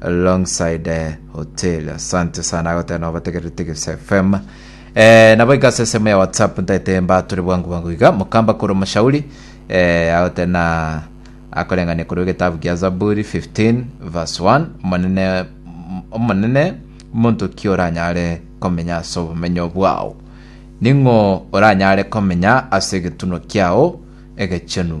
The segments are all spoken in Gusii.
alongside hotel asante sana agotera nabo bategerere tigis fm eh, nabo igase esemo ya whatsapp ntaete mbatore bwangu bwangu iga mukamba koro mashauri eh, agotera na akoreng'ania korwa egetabu gia zaburi 15 verse 1 omonene omonene monto ki oranyare komenya ase obomenyo bwao ning'o oranyare komenya ase egetuno kiao egechenu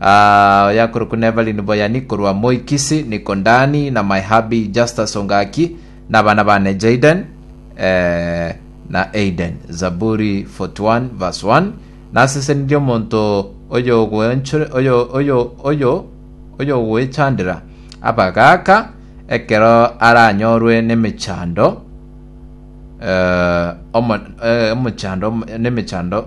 Aah, oyakorokwa Nevalin Boyani korwa Moi Kisii, Nico Ndani na my hubby Justus Ongaki na abana bane Jayden eh, na Aiden. Zaburi 41 verse 1 Nasesenirie omonto oyogwenchr- oyo oyo oyo oyogwechandera abagaaka ekero aranyorwe nemechando eh, omo- eh, omochando nemechando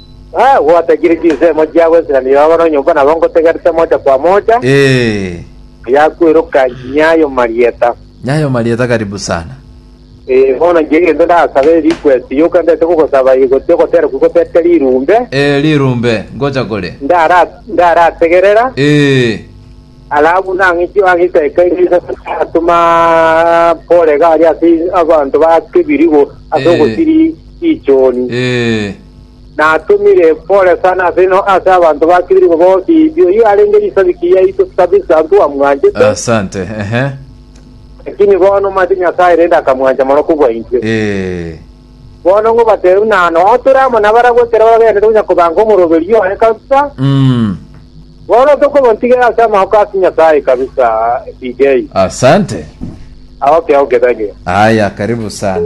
Aa, gwatakire chinsemo chia Abaisraeli baba nonyomba nabo ngotegerete mocha kwa mocha, Ee, yakweiroka nyayo marieta. Nyayo Marieta karibu sana. Ee, bono inche egento ndasaba ere request yoka ndete kogosaba eye gose ogotera kwe gotete rirumbe, Ee, rirumbe, ngocha kore. ndara ndarategerera, Ee, alafu nang'iti ang'e isaika eri atuma Pole iga aria ase abanto ba kebirigo ase Eh. ogosiri ichoni. ee. natumire pole sana ase ino ase abanto ba Kibiriko bonsi, oyio arenge risabiki yaito kabisa ntwamwanchete, Asante. Ehe. lakini bono mate Nyasae rende akamwancha mono kobua intwe. Eh. Bono ngobatebi ng'a noo tore amo nabarabwo ekero bagenderete gonya kobanga omoroberio oye kabisa, Mm. bono tokomotigera ase amaoko ase Nyasae kabisa DJ. Asante. Aoke aoke thank you. Haya, karibu sana.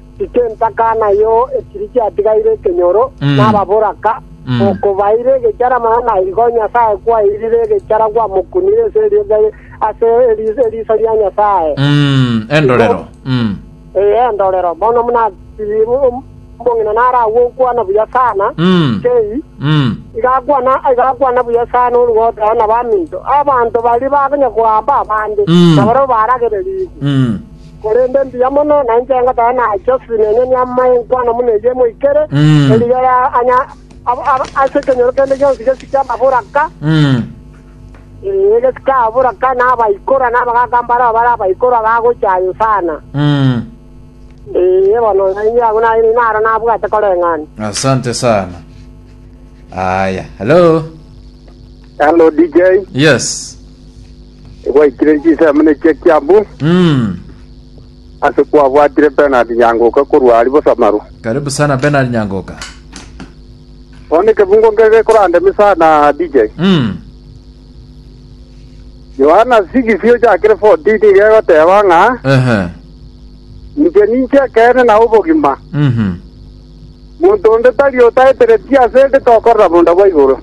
Inche ntaka nayo ekiri kiatigaire ekenyoro Mm. nababoraka, Mm. okobaire egechara mana na igo Nyasae kwairire egechara gwamokunire ase eriogi ase eri- eriso ria Nyasae. Mm, endorero. Mm. Ee, endorero bono muna omong'ina naragwe okwana buya sana Mm. kei Mm. igakwana igakwana buya sana orugotera na baminto abanto bari bakonya koamba abande Mm. na barabwo baragererigwe Mm. Korende mbuya mono nainche ngoteba nache osinene niamanye enkwano buna eyio emoikere, Mm. erigiya ya anya ab- ab- ase ekenyoro kende gionsi gesike amabura ka, Mm. ee, gesike amabura ka, na abaikora na abagaka mbarao bare abaikora gagocha aye sana. Mm. Ee, bono nainche abwo naye naro nabwate koreng'ana. asante sana aya hello Hello DJ, yes Egwaikire chisemi ne chia kiambu Mm. ase kwabwatire Bernard Nyangoka korwa aria Bosamaru. Karibu sana Bernard Nyangoka. Bono ekebungo nge gekorandemi sana DJ. Mm. Yohana 6 ochakire 14 gegoteba ng'a Ehe. inche ninche ekeene na obogima. Mhm. Monto onde tari otaeteretie ase eke tokorera bonda bwa igoro.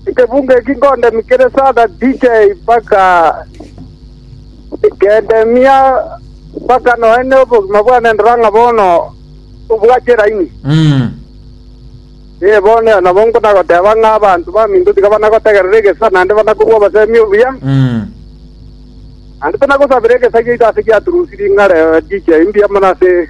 Ekebungo eki nkondemia kere Sada DJ mpaka kendemia mpaka noe nobogima bwane ndora ng'a bono obwate eraini. Ee, bono ere nabo nkona goteba ng'a abanto baminto tiga bana gotegerera egesa naende bana kobua obosemi obuya, naende tana gosabera egesa giaito ase giaturusirie ng'a rero DJ mbuya mono ase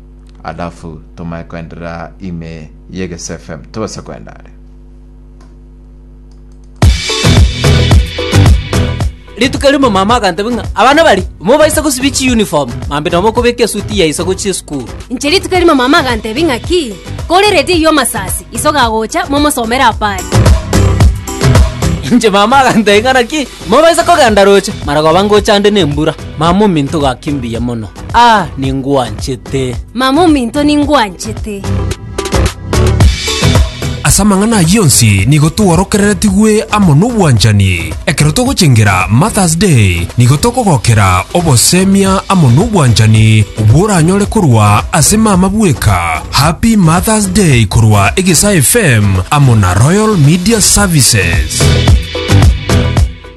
alafu tomae koenderera ime yegese fm tobase koenda are rituko rimo mama agantebe ng'a abana bari mobaisa gosibi chi uniform mambe nomo okobeka esuti yaisa gochi esukuru inche rituko rimo mama agantebi ng'aki kore redi iyo masasi iso gagocha momosomere apari inche mama agantebe ng'a naki mobaisa kogenda roche maragoba ngochande nembura mama ominto gaki mbuya mono Aa, ningwanchete! Mama ominto ningwanchete! Ase amang'ana ayio onsi nigo tworokereretigwe amo nobwanchani. Ekero togochengera Mother's Day, nigo tokogokera obosemia amo nobwanchani bworanyore korwa ase mama bweka. Happy Mother's Day korwa Egesaa FM amo na Royal Media Services.